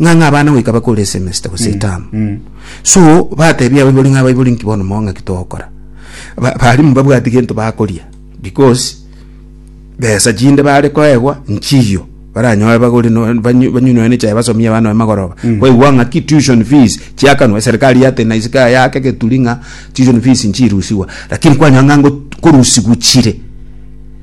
Ng'ang'a abana goika bakore esemester gose etamu. So batebia abaibori ng'a abaibori nki bono mao ng'aki togokora. Ba- Barimu mbabwati gento bakoria because besa chinde bare koegwa nchiyo baranyore bagore no- banyu- banyunore ne chai basomie abana baye magoroba. Kwaigwa ng'aki tuition fees chiakanwa eserikari yateba naise kaya yake geturi ng'a tuition fees nchirusigwa. Lakini kwanyora ng'a ngot- korusigwa chire.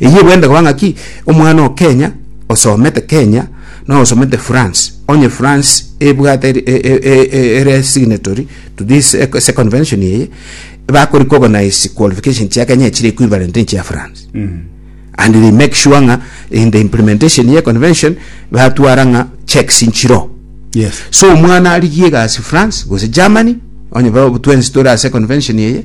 Eyio bwende koba ng'aki omwana o Kenya osomete Kenya na osomete France, onye France ebwate eri- e- e- e- e- ere signatory to this eh, ase convention eye, bakori kogonise qualification chia Kenya echire equivalent nechia France and they make sure ng'a in the implementation ye convention batwara ng'a checks nchiro Yes. so omwana arigie egasi france gose germany onye ba- twensi tore ase convention eye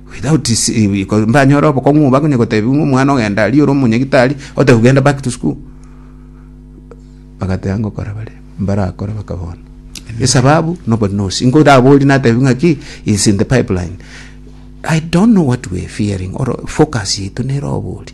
Without mbanyore obokong'u obo akonya gotebia ng'a omwana ogenda aria ore omonyagitari ote kogenda back to school bagateba ngokora bare mbarakore baka bono esababu nobody knows ingo raborie natebi ng'aki is in the pipeline I don't know what we are fearing or focus yaito nere oboria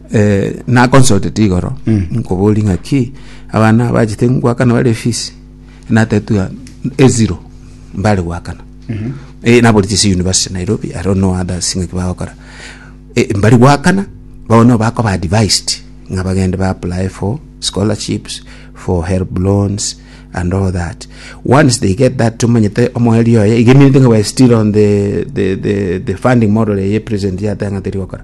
Eh, nakonsotete igoro nkobori ng'aki abana abachete gwakana bare efisi natetwa eziro mbare gwakana Eh, nabori chisi university nairobi i don't know others ng'aki bagokora Eh, mbari gwakana bono bakoba advised ng'a bagende ba apply for scholarships for help loans and all that once they get that tomanyete omoerio oye iga eminto ng'a we are still on the, the, the, the funding model eye president yatanga terigokora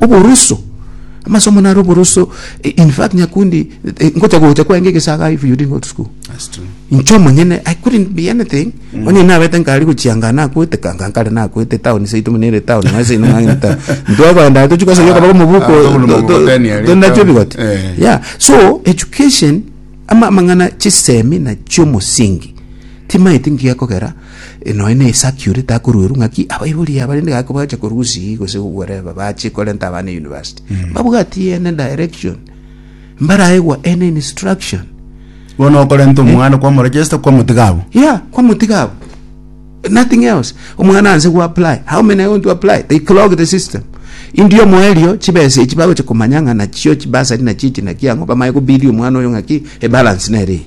Oboroso, amasomo naro oboroso, i- in fact Nyakundi, eh, ngocha gocha kwenge egesaga if you didn't go to school. That's true. Inche omonyene, I couldn't be anything. Onye nabete nkari gochianga nakwete, kanga nkare nakwete, town seitu muna ere town, naye seino mang'ina town. Ntwagoenda tochia kosa yoka baka mobuko, Ah, tobulu to- to- mokoteni ari tondache town. ebigote. Eh. Yeah, so education, ama- amang'ana chisemi na chiomosingi, timaeti ngekogera Nonya na Isaac oria takoruerwa ng'aki abaibori aba rende gaki bagacha korusia gose whatever bache korenta abana university mbabwati ene direction mbaraegwa ene instruction bono okorenta omwana kwamorejesta kwamotiga abwo yeah kwamotiga abo nothing else omwana anse go apply how many are going to apply they clog the system india omoerio chibesa echi bagocha komanya ng'a nachio chibasari nachio echi naki ang'o bamanye kobidia omwana oyo ng'aki ebalance nere eye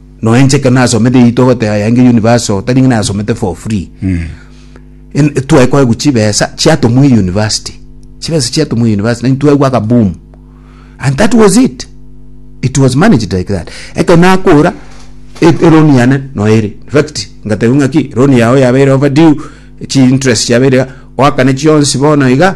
Nonya inche ekero nasomete eyio togoteba yainge university oo, tari ng'a nayasomete for free. En- twaekoegwa chibesa chiatomwa euniversity chibesa chiatomwa euniversity naintwe twaigwa akaboom and that was it it was managed like that ekero nakora e- eloan yane noyo ere infact ngatebiwa ng'aki loan yago yabeire overdue chi interest chiabeire iga oakane chionsi bono iga.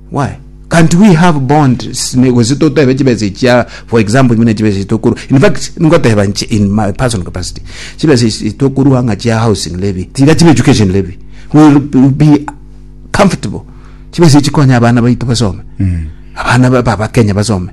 Why? Can't we have bonds? Ne- Gose totebe chibesa echia, for example, buna chibesa echia tokorwa. In fact, ngoteba nche in my personal capacity, chibesa echia tokorwa ng'a chia housing levy, tiga chibe education levy, will be comfortable. Chibesa echikonya abana baito basome. Abana ba- ba- Bakenya basome.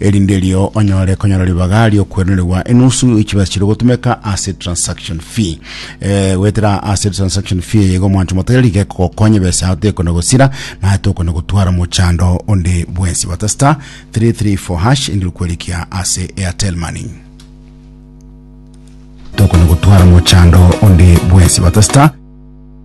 erinde erio onyore konyora ribaga ri'okweronerigwa enusu ya chibesa chiria ogotumeka ase transaction fee. Eh, goetera ase transaction fee eye iga omwancho motere riga ekogokonya ebesa yao tekona gosira naye tokona gotwara omochando onde bwensi. Bata star 334 hash erinde okwerikia ase Airtel Money. Tokona gotwara omochando onde bwensi. Bata star